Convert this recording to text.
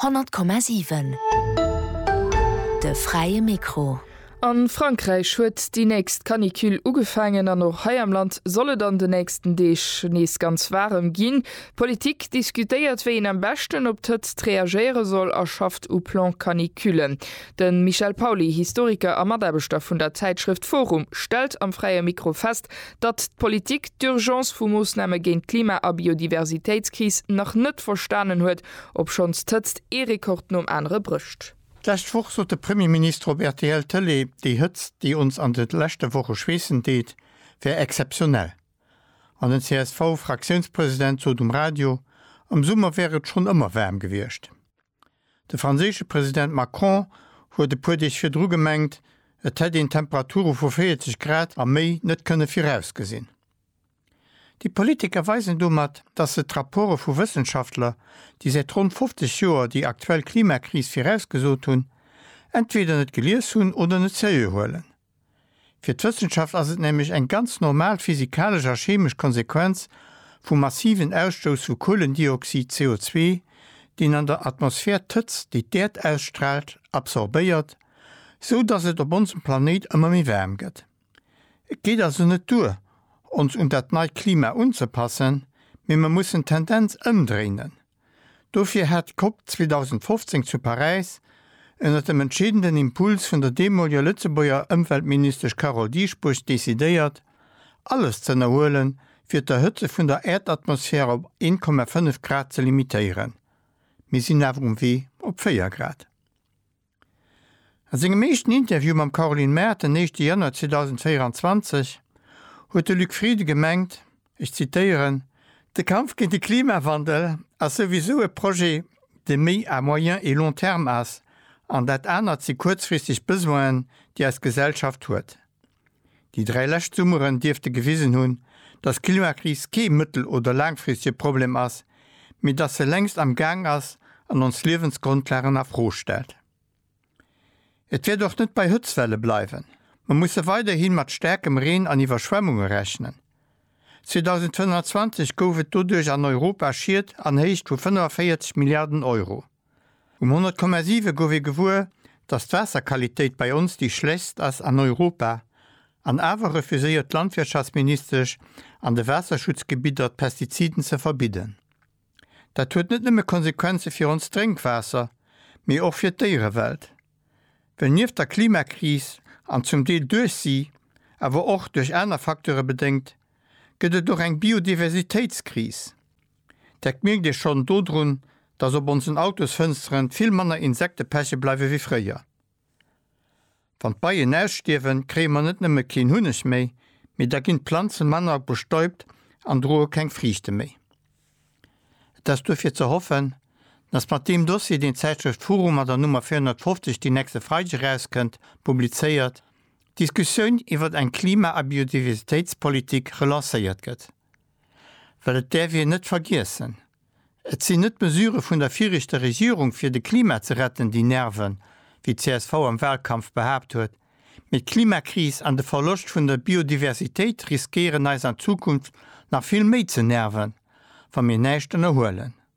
Honnert Komma siwen, de fräie Mikro. A Frankräich huet déi nächst Canicule ugefaangen an och hei am Land soll et an de nächsten Deeg nees ganz waarem ginn. D'Politik diskutéiert wéi een am beschten op d'Hëtzt reagéiere soll a schafft u Plan Canicule. De Michel Pauly, Historiker a Mataarbechter vun der Zäitschrëft forum, stellt am fräie Mikro fest, datt d'Politik d'Urgence vu Moossname géint d'Klima a Biodiversitéitskris nach net verstanen huet, obschonns d'Hëtzt ee Rekord nom anere brécht. D'lescht Woch sot de Premierminister op rtl Tëlee, déi Hëtzt, déi ons an de leschte Woche schweessen deet, wär exzeptionell. An den CSV-Fraktiounspresident sot um Radio, am Summer wär et schonn ëmmer waarm gewiescht. De franséische President Macron huet e puer Deeg virdru gemengt, et hätt een Temperature vu 40 Grad a méi net kënne virausgesinn. Déi Politiker weisen domat, datt se d'Rapporte vu Wëssenschaftler, déi säit ronn 50 Joer déi aktuell Klimakris virausgesot hunn, entweder net gelies hunn oder net seriö huelen. Fir d'Wëssenschaft ass et nämlech eng ganz normal physikalesch a chemesch Konsequenz vum massiven Ausstouss vu Kuelendioxid, CO2, deen an der Atmosphär d'Hëtzt, déi d'Äerd ausstraalt, absorbéiert, sou datt et op onsem Planéit ëmmer méi waarm gëtt. Et geet also net duer, ons un dat neit Klima unzepassen, mee mer mussen d'Tendenz ëmdréinen. Dofir hat d'COP 2015 zu Paräis, ënnert dem entscheedenden Impuls vun der deemoliger Lëtzebuerger Ëmweltministesch Carole Dieschbourg, decidéiert, alles z'ënnerhuelen, fir d'Erhëtze vun der Äerdatmosphär op 1,5 Grad ze limitéieren. Mir sinn awer um Wee op 4 Grad. A sengem éischten Interview mam Caroline Mart den éischte Januar 2024 huet de Luc Frieden gemengt, ech zitéieren, De Kampf géint de Klimawandel ass souwisou e Projet, dee méi à moyen et long terme ass, an dat anert si kuerzfristeg Besoinen, déi eis Gesellschaft huet. Déi dräi lescht Summeren dierfte gewisen hunn, dass d'Klimakris kee mëttel oder laangfristege Problem ass, mee dass se längst am Gaang ass an ons Liewensgrondlagen a Fro stellt. Et wäert och net bei Hëtztwelle bleiwen. Mer musse weiderhi mat staarkem Reen an Iwwerschwemmunge rechnen. 2025 gouf et doduerch an Europa Schied an Héicht vu 45 Milliarden Euro. Um 100,7 gouf ee gewuer, datt d'Waasserqualitéit bei ons déi schlechtst ass an Europa, an awer refuséiert d'Landwirtschaftsministesch an de Waasserschutzgebidder d'Pestiziden ze verbidden. Dat huet net nëmme Konsequenze fir ons Drénkwaasser, mee och fir d'Déierewelt. Well nieft der Klimakris, an zum Deel duerch si, awer och duerch aner Facteure bedéngt, gëtt et och eng Biodiversitéitskris. Dat mierkt ee schonn dodrun, dass op onsen Autosfënsteren vill manner Insekte peche bleiwe wéi fréier. Wann d'Beien ausstierwen, kréie mer net nëmme keen Hunneg méi, mee da ginn d'Planze manner bestäubt an droe keng Friichte méi. Et ass duerfir ze hoffen, dass mat deem Dossier, deen d'Zäitschrëft Furu mat der Nummer 450, déi nächste Freideg erauskënnt, publizéiert, d'Diskussioun iwwert eng Klima a Biodiversitéitspolitik relancéiert gëtt. Well et däerf een net vergiessen, et sinn net d'Mesure vun der virichter Regierung fir de Klima ze retten déi nerven, wéi csv am Wahlkampf behaapt huet, mee d'Klimakris an de Verloscht vun der Biodiversitéit riskéieren eis an Zukunft nach vill méi ze nerven, wa mir näischt ënnerhuelen.